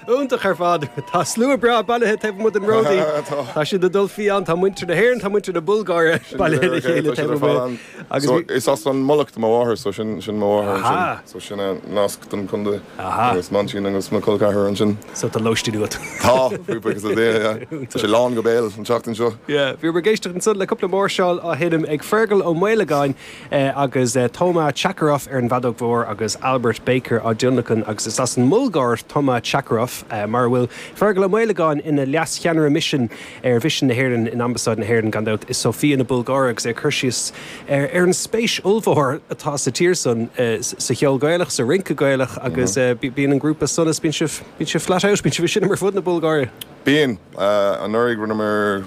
Iontach ar fad. Tá slua breá bailithe taobh amuigh den Ródaí. Tá siad ag dul fiáin. Tá muintir na hÉireann, tá muintir na Bulgáire bailithe le chéile taobh amuigh. Is as an Mhullach do mo mháthair so sin mo mháthair ansin. So sin an nasc don contae. Is m'aintín agus mo chol ceathrar ansin. So tá lóistín agat. Tá, buíochas le Dia, yeah. Tá sé lán go béal an tseachtain seo. Yeah, bhí mé ag éisteacht ansan le cúpla máirseáil á sheinm ag Fergal Ó Maolagáin agus Toma Chackaroff ar an bhfeadóg mhór agus Albert Baker á dtionlacan agus is as an mBulgáir Toma Chackaroff, mar a bhfuil Fergal Ó Maolagáin ina Leas-Cheannaire Misin ar Mhisean na hÉireann in Ambasáid na hÉireann, gan dabht, i Sóifia na Bulgáire agus é ag cur síos ar an spéis ollmhór atá sa tír san sa cheol Gaelach, sa rince Gaelach agus bíonn an grúpa Sonas, bíonn sibh flat out, bíonn sibh ag seinm ar fud na Bulgáire? Bíonn. Anuraidh rinneamar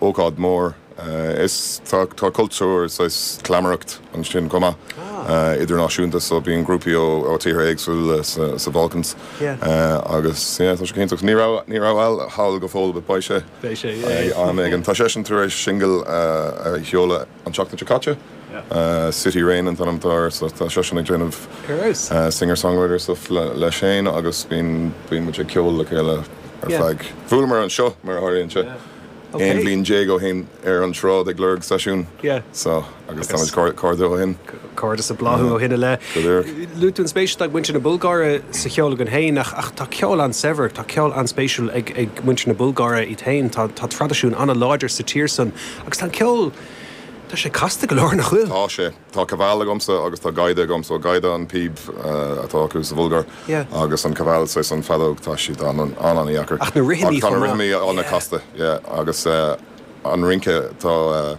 ócáid mór. Is tá tá cultúr saghas cleamaireacht ansin chomh maith idirnáisiúnta so bíonn grúpaí ó ó tíortha éagsúla sa sa Bhalkans agus yeah tá sé go hiontach. Ní raibh ní raibh Al thall go fóill but beidh sé beidh sé yeah am éigin. Tá seisean tar éis singil a sheoladh. an tseachtain seo caite. City Rain an t-ainm atá air so tá seisean ag déanamh singer songwriter stuff le Shane agus bíonn bíonn muid ag ceol le chéile ar feadh, bhuaileamar anseo mar a tharlaíonn sé, aon bhliain déag ó shin ar an tsráid ag lorg seisiún so agus táimid cairdiúil ó shin. Cairdeas ag bláthú ó shin i leith. Go leor. Luaigh tú an spéis atá ag muintir na Bulgáire sa cheol againn féin ach tá ceol an-saibhir, tá ceol an-spéisiúil ag muintir na Bulgáire iad féin, tá traidisiún an-láidir sa tír san agus tá an ceol, tá sé casta go leor, nach bhfuil? Tá sé. Tá Kaval agamsa agus tá Gaida agamsa so Gaida an píb atá acu sa Bhulgáir agus an Kaval saghas an feadóg, tá siad an-an-an-dheacair. Ach na rithimí chomh maith. Ach tá na rithimí an-chasta, yeah, agus an rince, tá.